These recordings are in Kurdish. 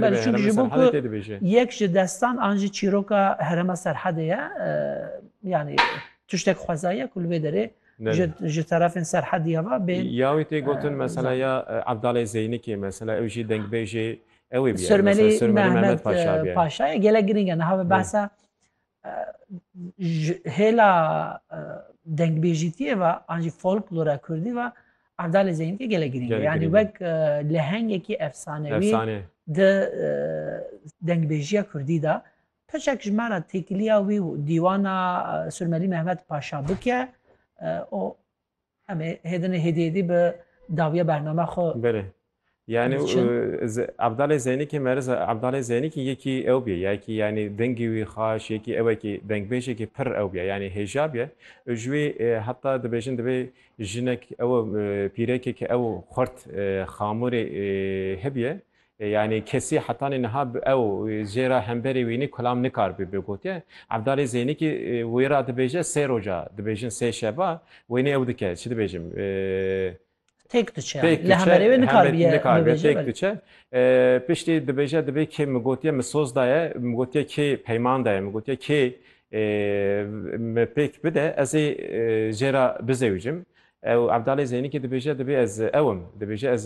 Belê çünkü ji bo ku yek ji destan an jî çîroka herema Serhedê ye yanî tiştek xwezaye ku li vê derê ji terefên Serhedî ya ve bên. Ya wî tê gotin mesela ya Evdalê Zeynikê mesela ew jî dengbêjê ew ê bîye. Sirmelî Mehmet Paşa ye. Gelek girîng e niha ve behsa Ji hêla dengbêjîtiyê ve an jî folklora kurdî ve Erdalê Zeynîkê gelek girîng e. Yanî wek lehengekî efsanewî di dengbêjiya kurdî de peçek ji me re têkiliya wî û dîwana Surmelî Mehmet Paşabik e û Em ê hêdinê hêdî hêdî bi dawiya bername xwe. Belê. Yanî Ebdalê Zeynikê merz e. Ebdalê Zeynikê yekî ew bîye. Yekî yanî dengî wî xaş, yekî ewekî dengbêjekî pir ew bîye. Yanî hêja bîye. Û ji wî heta dibêjin divê jinek ew pîrekê ke ew xurt xamûrê hebîye. Yanî kesî hetanî niha ew jê re hemberî wînî kulam nikaribî bê gotiye. Evdalî Zênîkî wî re dibêje sê roja, dibêjin sê şeva wênî ew dike, çi dibêjim? Têk diçe yanî. Li hemerê wê nikaribî ye bibêje. Nikaribî têk diçe. Piştî dibêje dibê kê min gotiye min soz daye, min gotiye kê peyman daye, min gotiye kê min pêk bide ez ê jê re bizewicim. Ew Evdalê Zênîkî dibêje dibê ez ew im. Dibêje ez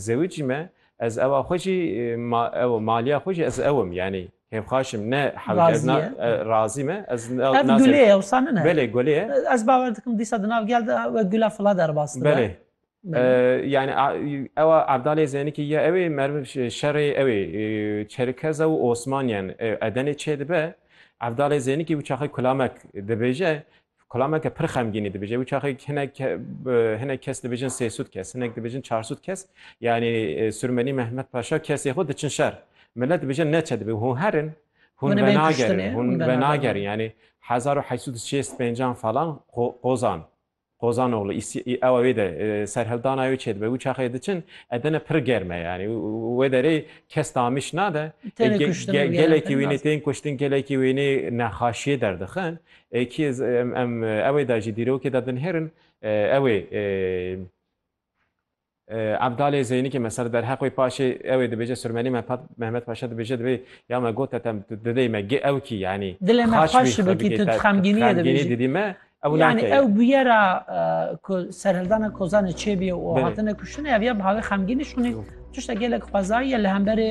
zewicî me. Ez ewa xwe jî ma ew maliya xwe jî ez ewim yanî hêvxaş im ne hewce ez na razî me ez Ev gulê ye wisa nine? Belê gulê ye. Ez bawer dikim dîsa di nav gel de wek gula fila derbas dibe. Belê. Yani ewa Evdalê Zênikî ya ew ê merv şerê ew ê Çerkeza û Osmaniyan edenê çêdibe. Evdalê Zênikî wî çaxê kulamek dibêje Kulameke pir xemgînî dibêje. Wî çaxê hinek hinek kes dibêjin sêsûd kes, hinek dibêjin çarsûd kes. Yanî Sûrmenî Mehmet Paşa kesê xwe diçin şer. Milet dibêje ne çi dibê. Hûn herin, hûn venagerin, hûn venagerin. Yanî hezar û heşt sed û şêst pêncan falan Qozan. Qozanoğlu ewa wê de serhildana wê çêdibe wî çaxê diçin edene pir germe yani wê derê kes tamiş nade gelekî wînê tên kuştin gelekî wînê nexaşiyê derdixin Kî em ewê de jî dîrokê de dinihêrin ewê Ebdalê Zeynikê me ser derheq wê paşê ewê dibêje Sirmenî me Mehmet Paşa dibêje dibê ya me got etem didê me gi ew kî yanî dilê me xweş bikî tu xemgîniyê dibêjî didî me ew nake yanî ew bûyera ku serhildana Kozanê çêbî û hatine kuştinê ev ya bi havê xemgînî şûnê tişta gelek xwezayî ye li hemberê